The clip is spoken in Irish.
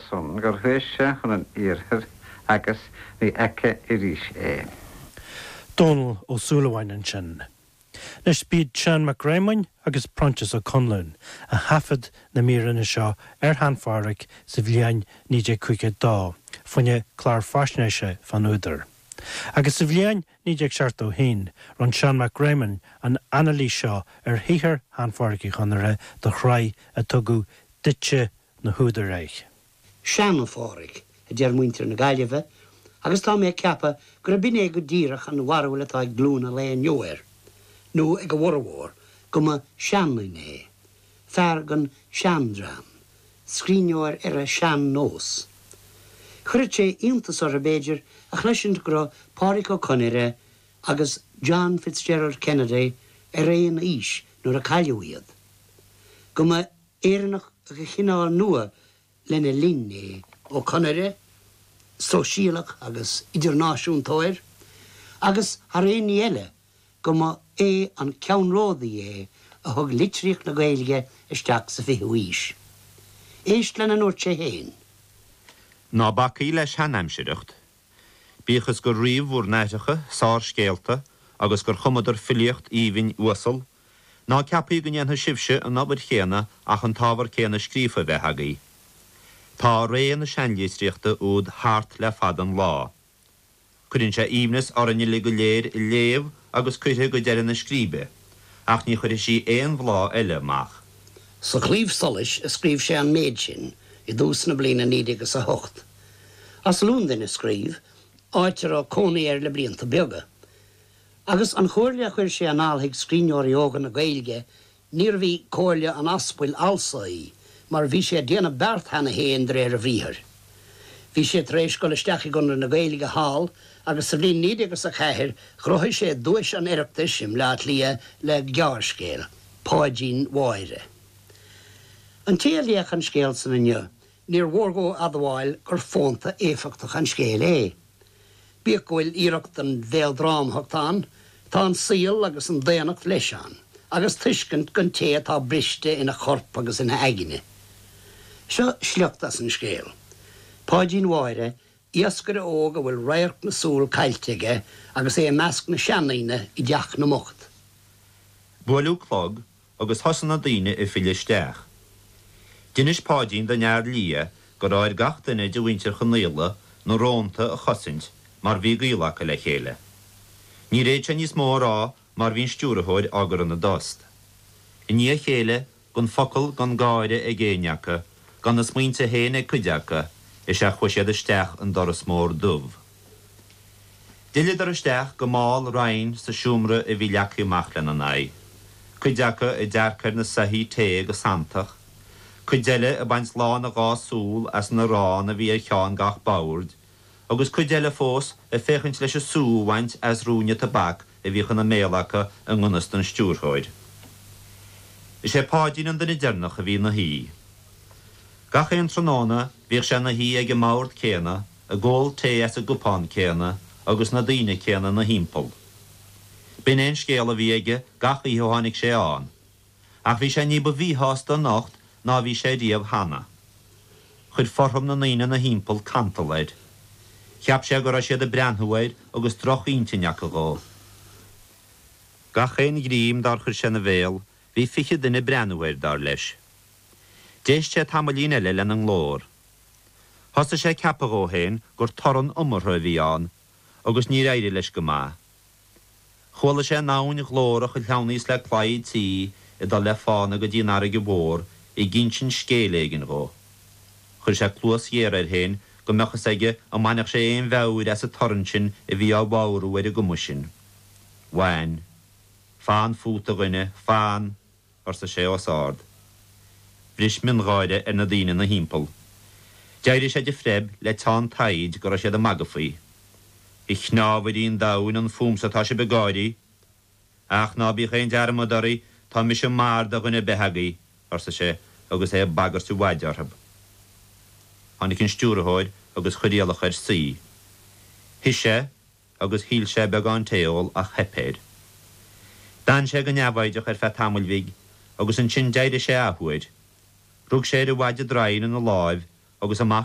son gur thuit sé chun an iarthair agus ní fheicfidh arís é. Dónall Ó Súilleabháin ansin. Anois b'iad Seán Mac Réamoinn agus Proinsias Ó Conluain a thaifead na míreanna seo ar Shean-Phádraic sa bhliain 1952, fá choinne clár faisnéise fán údar. Agus sa bhliain 1971 rinn Seán Mac Réamoinn an anailís seo ar shaothar Shean-Phádraic Uí Chonaire do shraith ar tugadh Dúiche na nÚdar air. Sean-Phádraic, a deir muintir na Gaillimhe, agus tá mé ag ceapadh gurb 'in é go díreach an bharúil atá ag glúin an lae inniu air, nó ag a bhformhór, go mba sheanduine é, fear den seandream, scríbhneoir ar an sean-nós. Chuirfeadh sé iontas orthu, b'fhéidir, a chloisint go raibh Pádraic Ó Conaire agus John Fitzgerald Kennedy ar aon aois nuair a cailleadh iad, go mba. Éireannach de chineál nua lena linn é. Ó Conaire, sóisialach agus idirnáisiúntóir, agus, thar aon ní eile, go mba é an ceannródaí é a thug litríocht na Gaeilge isteach sa 20ú aois. Éist lena ndúirt sé féin. Ná bacaigí le seanaimsireacht. Bíodh is gur ríomh bhur n-aithreacha, sárscéalta, agus gur chumadar filíocht aoibhinn uasal Ná ceapaigí go ndéanfaidh sibhse an obair chéanna acht an t-ábhar céanna scríofa a bheith agaibh. Tá ré na seanlitríochta úd thart le fada an lá. Cuireann sí aoibhneas orainn uilig go léir í a léamh agus cuirfidh go deireadh na scríbe, ach ní chuirfidh sí aon bhláth eile amach. Sa Chlaidheamh Soluis a scríobh sé an méid sin i dtús na bliana 1908. As Lúndain a scríobh, áit a raibh cónaí air le blianta beaga. Agus an chomhairle a chuir sé anall chuig scríbhneoirí óga na Gaeilge, níorbh í comhairle an aspail fhalsa í, mar bhí sé ag déanamh beart cheana féin de réir a bhriathair. Bhí sé tar éis dul isteach i gConradh na Gaeilge thall, agus sa bhliain 1904 ghnóthaigh sé Duais an Oireachtais i mBleá Cliath le gearrscéal, Páidín Mháire. An té a léadh an scéal san inniu, Níor mhór dhó admháil gur fónta éifeachtach an scéal é. Bíodh go bhfuil iarracht den mhéaldrámathacht ann, tá an saol agus an daonnacht leis ann, agus tuiscint don té atá briste ina chorp agus ina aigne. Seo sliocht as an scéal. Páidín Mháire, iascaire óg a bhfuil radharc na súl caillte aige agus é i measc na seandaoine i dteach na mbocht. Buaileadh clog, agus thosaigh na daoine ag filleadh isteach. D'inis Páidín don Fhear Liath go raibh ar gach duine de mhuintir Chonaola na rónta a chosaint mar bhí gaol acu le chéile. Níor fhéad sé níos mó a rá mar bhí an Stiúrthóir á gcur ina dtost. I ndiaidh a chéile, gan focal gan gáire ag éinne acu, gan a smaointe féin ag cuid acu, is ea chuaigh siad isteach an doras mór dubh. D'fhilleadar isteach go mall righin sa seomra a bhí leagtha amach lena n-aghaidh, cuid acu ag dearcadh ar na soithí tae go santach, cuid eile ag baint lán a dhá súl as an arán a bhí ar cheann gach boird, agus cuid eile fós ag féachaint leis an sú a bhaint as ruainne tobac a bhí ina mbéal acu i nganfhios don stiúrthóir. Is é Páidín an duine deireanach a bhí ina shuí. Gach aon tráthnóna bhíodh sé ina shuí ag an mbord céanna, ag ól tae as an gcupán céanna agus na daoine céanna ina thimpeall. B'in é an scéal a bhí aige gach oíche ó tháinig sé ann, ach bhí sé ní ba mhíshásta anocht ná a bhí sé riamh cheana. Chuir fothram na ndaoine ina thimpeall cantal air. Cheap sé go raibh siad ag breathnú air agus drochintinn acu dhó. Gach aon ghreim dár chuir sé ina bhéal, bhí fiche duine ag breathnú air, dar leis. D'éist sé tamaillín eile lena nglór. Thosaigh sé ag ceapadh dhó féin gur torann iomartha a bhí ann, agus níor éirigh leis go maith. Chuala sé an abhainn ghlórach a shleamhnaíos le claí tí ag dul le fána go dtí an fharraige mhór ag insint scéil éigin dhó. Chuir sé cluas ghéar air féin go mbeadh a fhios aige an mbainfeadh sé aon mheabhair as an torann sin a bhí á bhodhrú ar an gcuma sin. Bhain. Fan fút, a dhuine, fan! arsa sé os ard. Bhris miongháire ar na daoine ina thimpeall. D'éirigh sé de phreib le teann taighd go raibh siad ag magadh faoi. A chnámhairí an domhain an fúm sa tá sibh ag gáirí. Ach ná bíodh aon dearmad oraibh, tá mise mar do dhuine ar bith agaibh, arsa sé agus é ag bagairt a mhaide orthu. Tháinig an stiúrthóir agus chuir iallach air suí. Shuigh sé. agus shíl sé beagán tae a ól ach theip air. D'fhan sé go neamhfhoighdeach ar feadh tamaill bhig agus ansin d'éirigh sé athuair. Rug sé ar a mhaide draighin ina láimh agus amach